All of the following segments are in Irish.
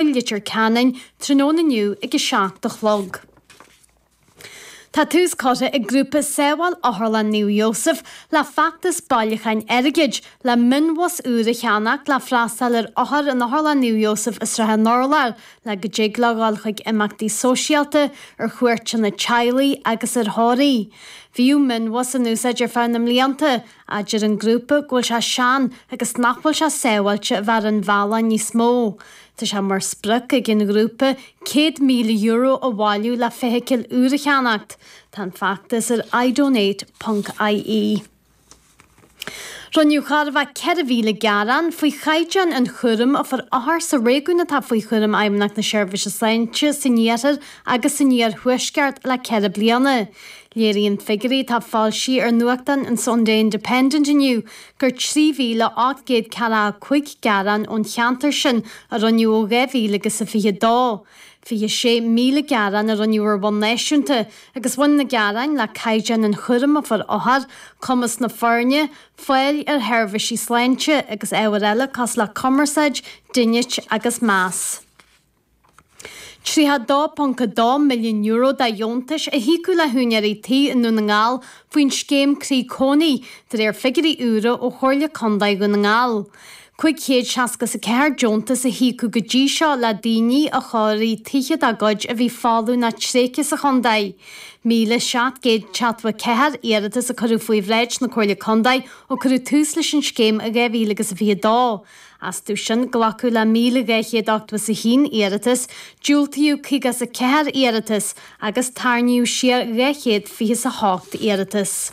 i Leitir Ceanainn tráthnóna inniu ag a seacht a chlog. Tá tús curtha ag grúpa Sábháil Otharlann Naomh Iósaf le feachtas bailiúcháin airgid le mionbhus úr a cheannacht le freastáil ar othair in Otharlann Naomh Iósaf i Srath an Urláir le go dtig leo dul chuig imeachtaí sóisialta, ar chuairteanna teaghlaigh agus ar thórraimh. Bhíodh mionbhus in úsáid ar feadh na mblianta Ach deir an grúpa go bhfuil sé sean agus nach bhfuil sé sábháilte a bheith ar an bhealach níos mó. Tá sé mar sprioc ag an ghrúpa €100,000 a bhailiú le feithicil úr a cheannacht. Tá an feachtas ar idonate ponc ie. Rinneadh chóir a bheith 4,000 gearán faoi chaighdeán an chúraim a fuair othair sa réigiún atá faoi chúram Fheidhmeannacht na Seirbhíse Sláinte san Iarthar agus san Iarthuaisceart le ceithre bliana. Léiríonn figiúirí atá foilsithe ar nuachtán an Sunday Independent inniu gur 3,845 gearán ón cheantar sin a rinneadh ó 2022. 26,000 gearán a rinneadh ar bhonn náisiúnta agus bhain na gearáin le caighdeán an chúraim a fuair othair, cumas na foirne, fáil ar sheirbhísí sláinte agus ábhair eile cosúil le cumarsáid, dínit agus meas. €32.2 milliún de dheontais a híocadh le húinéirí tí i nDún na nGall faoin scéim Croí Cónaí, de réir figiúirí úra ó Chomhairle Contae Dhún na nGall. 564 deontas a híocadh go dtí seo le daoine a chóirigh tithe dá gcuid a bhí folamh nó tréigthe sa chontae. 1,774 iarratas a cuireadh faoi bhráid na Comhairle Contae ó cuireadh tús leis an scéim i 2022. Astu sin, glacadh le 1,281 iarratas, diúltaíodh 54 iarratas agus tarraingíodh siar 228 iarratas.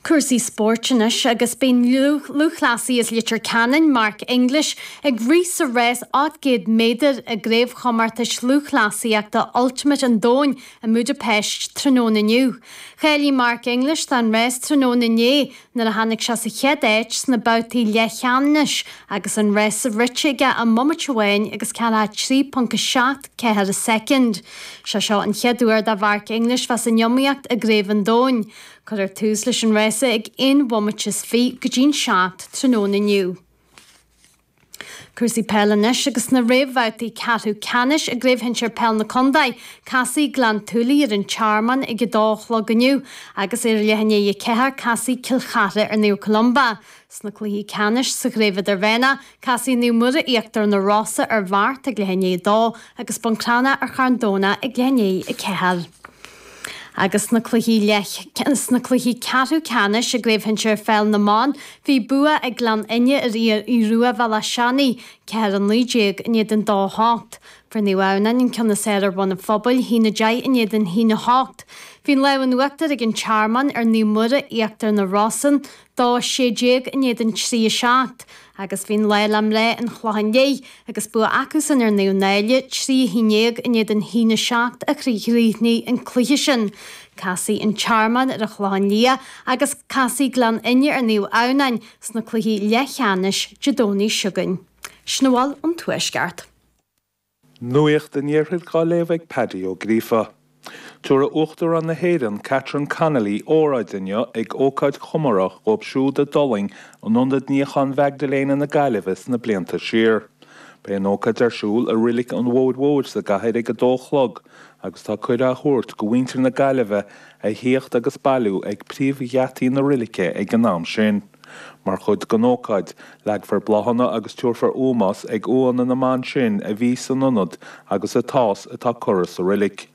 Cúrsaí spóirt anois agus beidh an lúthchleasaí as Leitir Ceanainn Mark English ag rith sa rás 800 méadar i gCraobhchomórtais Lúthchleasaíochta Ultimate an Domhain i mBúdaipeist tráthnóna inniu. Cháiligh Mark English don rás tráthnóna inné Nuair a tháinig sé sa chéad áit sna babhtaí leathcheannais agus an rás rite aige i mbomaite amháin agus 43.74 soicind. Sé seo an chéad uair do Mhark English bheith san iomaíocht i gCraobh an Domhain. Cuirfear tús leis an rása ag aon bhomaite is fiche go dtí'n seacht tráthnóna inniu. Cúrsaí peile anois agus sna réamhbhabhtaí ceathrú ceannais i gCraobh Shinsir Peile na Contae, casfaidh Gleann tSúilí ar an Tearmann ag a 2 a chlog inniu agus ag leath i ndiaidh a ceathair casfaidh Cill Chartha ar Naomh Columba. Sna cluichí ceannais sa Chraobh Idirmheánach, casfaidh Naomh Muire Íochtar na Rosann ar Bheart ag leath i ndiaidh a 2 agus Bun Crana ar Charn Domhnach ag leath i ndiaidh a ceathair. Agus sna cluichí leath sna cluichí ceathrú ceannais i gCraobh Shinsir Pheil na mBan, bhí bua ag Gleann Fhinne ar Aodh Rua Bhéal Átha Seanaidh, 4 19 in éadan 2 8. Fuair Naomh Adhamhnáin an ceann is fhearr ar Bhun an Phobail, haon 10 in éadan haon 8. Bhí an lámh in uachtar ag An Tearmann ar Naomh Muire, Íochtar na Rosann, dó sé déag in éadan trí a seacht agus bhí an lá le mná an Chlocháin Léith agus bua acusan ar Naomh Náille, trí a haon déag in éadan haon a seacht a chríochnaigh an cluiche sin. Casfaidh an Tearmann ar an Chlochán Liath agus casfaidh Gleann Fhinne ar Naomh Adhamhnáin sna cluichí leathcheannais Dé Domhnaigh seo chugainn. Sin a bhfuil ón Tuaisceart. Nuacht an Iarthair dhá léamh ag Paddy Ó Gríofa. Tabharfaidh Uachtarán na hÉireann, Catherine Connolly óráid inniu ag ócáid chomórtha dhóibh siúd a d'fhulaing in Ionad Níocháin Mhaigdiléana na Gaillimhe sna blianta siar. Beidh an ócáid ar siúl i Roilic an Bhóthair Mhóir sa gcathair ag a dó a chlog agus tá cuireadh á thabhairt go mhuintir na Gaillimhe a thíocht agus bailiú ag príomhgheataí na roilice ag an am sin. Mar chuid den ócáid, leagfar bláthanna agus tabharfar ómós ag uaigheanna na mban sin a bhí san ionad agus atá is atá curtha sa roilic.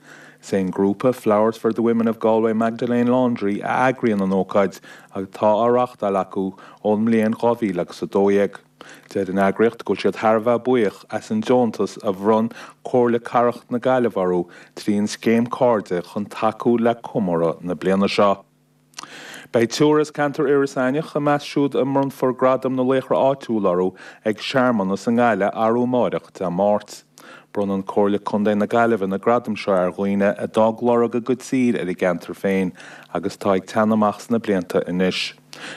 Sé an grúpa Flowers for the Women of Galway Magdalene Laundry a eagraíonn an ócáid agus atá á reáchtáil acu ón mbliain 2000 agus 12. Deir an eagraíocht go bhfuil siad thar a bheith buíoch as an deontas a bhronn Comhairle Cathrach na Gaillimhe orthu trí an scéim Cairde chun tacú le comóradh na bliana seo. Beidh triúr as ceantar Iorras Aithneach i measc siúd a mbronnfar Gradaim na Laochra Áitiúil orthu ag searmanas i nGaillimh arú amáireach, Dé Máirt. Bronnann Comhairle Contae na Gaillimhe na gradaim seo ar dhaoine a d'fhág lorg a gcuid saoil ar a gceantar féin agus atá ag teannadh amach sna blianta anois.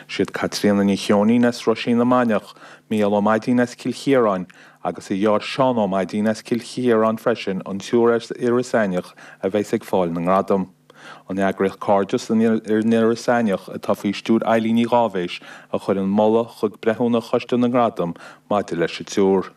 Siad Caitríona Ní Cheoinín as Roisín na Mainiach, Mícheál Ó Maidín as Cill Chiaráin agus a dheartháir Seán Ó Maidín as Cill Chiaráin freisin an triúr as Iorras Aithneach a bheas ag fáil na ngradam. An eagraíocht Cairdeas thiar in Iorras Aithneach, atá faoi stiúir Eileen Ní Dháibhis, a chuir an moladh chuig breithiúna Choiste na nGradam maidir leis an triúr.